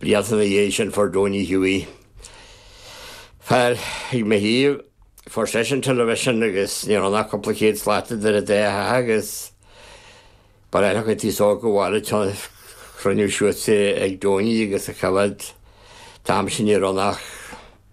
Blianta ina dhiaidh sin fuair Donie Hughie, fear ag mo thaobh, fuair seisean television agus ní raibh ann ach cúpla céad slat idir é a theach agus Baile Átha Cliath. Is dócha gur ghnách cruinniú ansiúd ag Donie agus a choimhéad. An t-am sin ní raibh ach.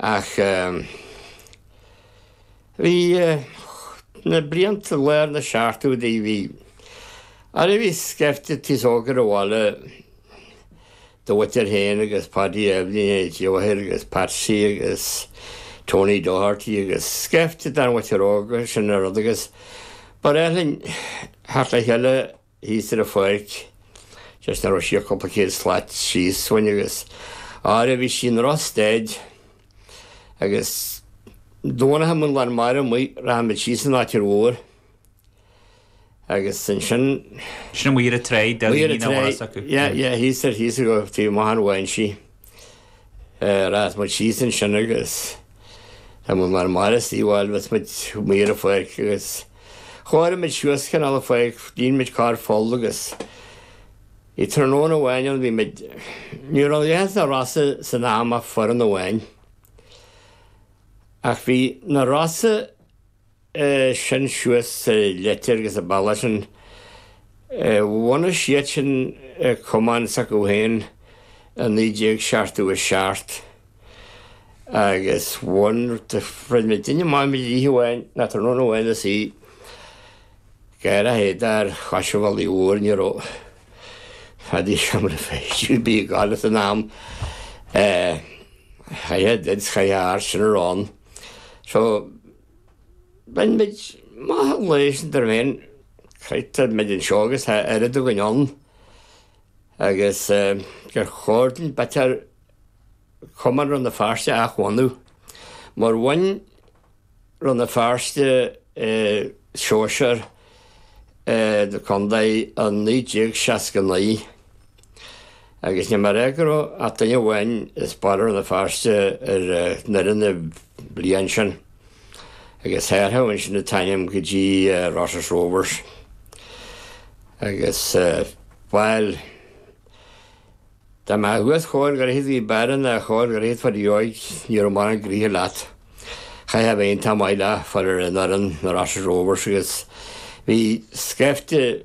Ach bhí na blianta lár na seachtóidí, bhí Aire bhí scaifte d'aos óg ar an bhaile do mhuintir féin agus Paidí Eibhlín H. O'Hare agus Patsy agus Tony Doherty agus scaifte den mhuintir óga, sin an rud, agus ba ghnách linn theacht le chéile, thíos ar an pháirc, just nach raibh sí ach cúpla céad slat síos uainn, agus ar ndóigh bhí sí i ndrochstaid, agus dá mbeadh an lán mara amuigh, rachadh muid síos an tráigh mhór, agus ansin. Sin amuigh ar an tráigh, deilín mín á dhoras acu. Yeah, yeah, thíos ar, thíos ar, taobh amuigh thar Mhaigh an Sídh. Rachadh muid síos ansin agus tá muid mar Máire Uí Fháil thomhais muid amuigh an pháirc agus chóirigh muid suas cineál a pháirc, dhéanadh muid carr pholl agus i tráthnóna amháin an bhí muid, ní raibh leis na Rosa san am ach foireann amháin. Ach bhí na Rosa iad sin suas sa Leitir agus na bailte sin. Bhunaigh siadsan cumann s'acu féin i 1977 agus bhain, throid mé duine amháin i dlíthe amháin, ná tráthnóna amháin is é ag athrú éadaí ar chois an bhealaigh mhóir, ní raibh a dhath de sheomraí feistis ag gabháil san am, chaith a dhead 's chaith a athair sin romhainn. So. Bhí muid ag maíomh leis an dream eile, tá muid anseo agus tá oiread againn ann agus gur chóir dúinn b'fhéidir cumann Rann na Feirste a athbhunú, mar bhain Rann na Feirste sóisear na Condae i 1969. Agus níor imir ach duine amháin as baile Rann na Feirste ar fhoireann na bliana sin, agus hathraíodh ansin an t-ainm go dtí Rosses Rovers. Agus, bhuel, dá mbeadh uait chóir gur iad a bhí báire ná chóir gur iad fá dheoidh, ní raibh mórán gnoithe leat. Chaithfeá bheith iontach maith le fáil ar an fhoireann, na Rosses Rovers, agus bhí scaifte,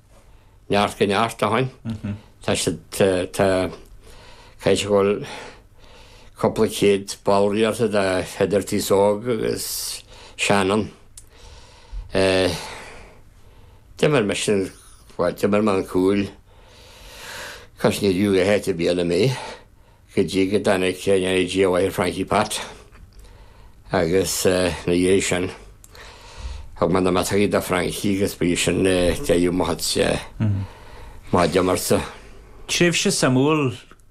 Neart go neart, áfach. Tá siad, tá, caithfidh sé go bhfuil cúpla céad báire buaite ag Peadar T. Óg agus Seanán. Eh, d'imir mise an, bhuel, d'imir mé sa chúl. Cois níor fhiú a shéideadh bliana mé. go dtí go dtáinig Néilí deartháir Francie Phat agus ina dhiaidh sin thug mé na miotógaí do Francie agus ba í sin deireadh mo chuidse maith d'iomarca. Tréimhse suimiúil